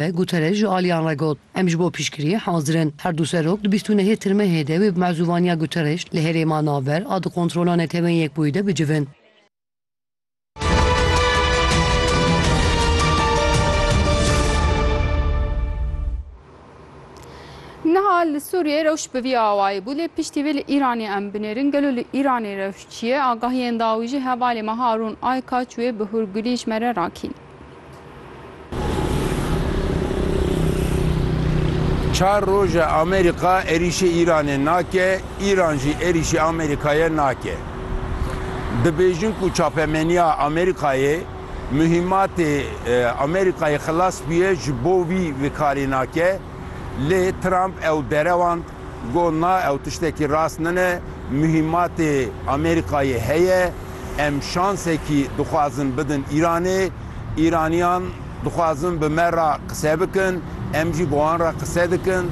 Be Guterres ji aliyan re got, Em ji bo piştgiriyê hazir in. Her du serok di bîst û nehê tirmehê de wê bi mezûvaniya Guterres li herêma navber a di kontrola Netewên Yekbûyî de bicivin. Niha li Sûriyeyê rewş bi vî awayî bû lê piştî vê li Îranê em binêrin gelo li Îranê rewş çi ye? Agahiyên dawî jî hevalê me Harûn Aykaç wê bi hûrgulî ji me re rakîn. Çar roj e Amerîka êrîşê Îranê nake, Îran jî êrîşê Amerîkayê nake. Dibêjin ku çapemeniya Amerîkayê muhîmatê Amerîkayê xilas bûye ji bo wî vikarî nake, lê Trump ew derewand. Got, Na ew tiştekî rast nine, muhîmatê Amerîkayê heye, em şansekî dixwazin bidin Îranê, Îraniyan dixwazin bi me re qise bikin, em jî bi wan re qise dikin,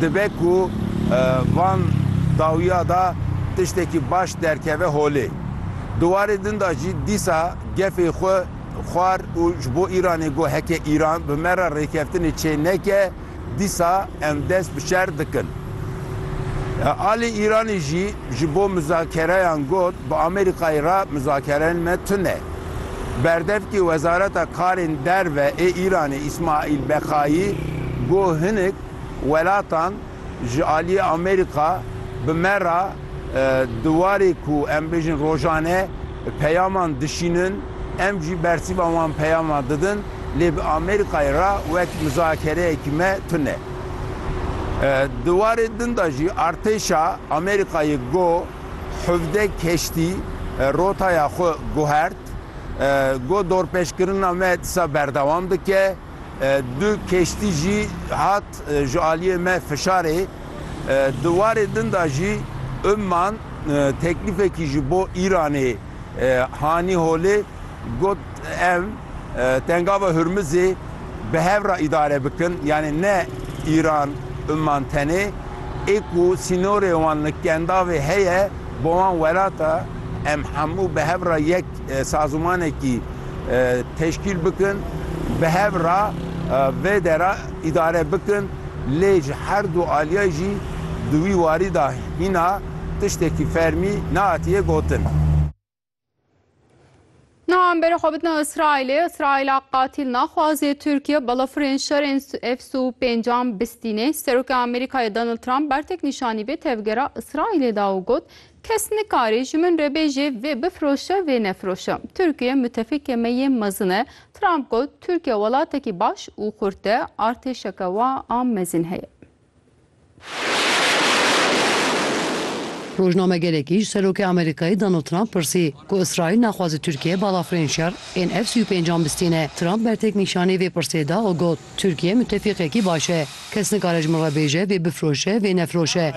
dibe ku van dawiya de tiştekî baş derkeve holê. Di warê din de jî dîsa gefê xwe xwar û ji bo Îranê got, heke Îran bi me re rêkeftinê çê neke, Dîsa em dest bi şer dikin. Alî Îranî jî ji bo muzakereyan got bi Amerîkayê re muzakereyên me tune. Berdevkê Wezareta Karên Derve ê Îranê Îsmaîl Bexayî got hinek welatan ji aliyê Amerîka bi me re di warê ku em bêjin rojane, Peyaman dişînin, em jî bersiva wan peyaman didin, lê bi Amerîkayê re wek mizakereyekî me tune. Di warê din de jî artêşa Amerîkayê got hevdeh keştî rotaya xwe guhert, got dorpêşkirina me disa berdewam dike. Du keştî jî hat ji aliyê me fişarê. Di warê din de jî Umman teklîfekî ji bo Îranê hanî holê, got em Tengava Hurmizê bi hev re îdare bikin, yanî ne Îran Umman tenê, ê ku sînorê wan li Kendavê heye bo wan welata, em hemû bi hev re yek Sazûmanekî teşkîl bikin, bi hev re vê dera îdare bikin lê ji her du aliyê jî di wî warî de hîna tiştekî fermî nehatiye gotin. Niha em berê xwe bidin Îsraîlê. Îsraîla qatîl naxwaze Tirkiye balafirên şerên F sû pêncan bistîne. Serokê Amerîkayê Donald Trump bertek nîşanî vê tevgera Îsraîlê da û got, Kes nikarê ji min re bêjê vê bifroşe vê nefroşe. Tirkiye mutefîkê me yê mezin e. Trump got Tirkiye welatekî baş û xurt e, artêşeke wa a mezin heye. Rojnamegerekî ji Serokê Amerîkayê Donald Trump pirsî ku Îsraîl naxwaze Tirkiye balafirên şer ên F-sî û pênc an bistîne. Trump bertek nîşanî vê pirsê da û got, Tirkiye mutefîqekî baş e. Kes nikare ji min re bêje vê bifiroşe, vê nefiroşe.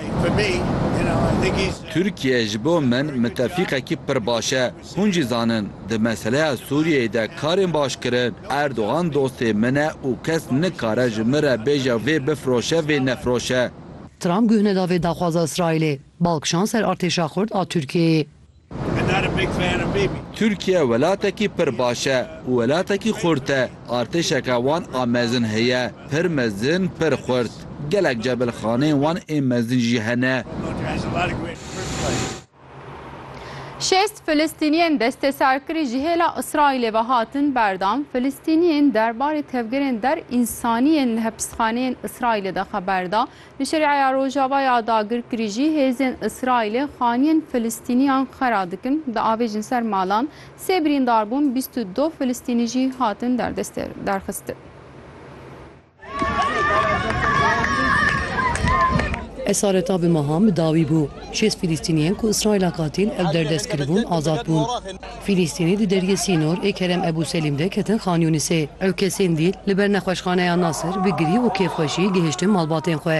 Tirkiye ji bo min mutefîqekî pir baş e. Hûn jî zanin, di meseleya Sûriyeyê de karên baş kirin. Erdogan dostê min e û kes nikare ji min re bêje vê bifiroşe, vê nefiroşe. Trump guh neda vê daxwaza Îsraîlê, bal kişand ser artêşa xurt a Tirkiyeyê. Tirkiye welatekî pir baş e û welatekî xurt e. Artêşeke wan a mezin heye, pir mezin, pir xurt. Gelek cebilxaneyên wan ê mezin jî hene. Şêst Filistîniyên desteserkirî ji hêla Îsraîlê ve hatin berdan. Filistîniyên derbarê tevgerên der însanî yên li hepsxaneyên Îsraîlê de xeber da. Li Şeriaya Rojava ya dagirkirî jî hêzên Îsraîlê xaniyên Filistîniyan xera dikin, diavêjin ser malan, sê birîndar bûn, bîst û du Filistînî jî hatin derdeste derxistin. Esareta bi mehan bi dawî bû. Şêst Filistîniyên ku Îsraîla katîn ew derdest kiribûn azad bûn. Fîlîstînî di deriyê Sînor ê Kerem Ebû Selîm de ketin Xan Yûnisê. Ew kesên dîl li ber nexweşxaneya Nasir bi girî û kêfxweşî gihiştin malbatên xwe.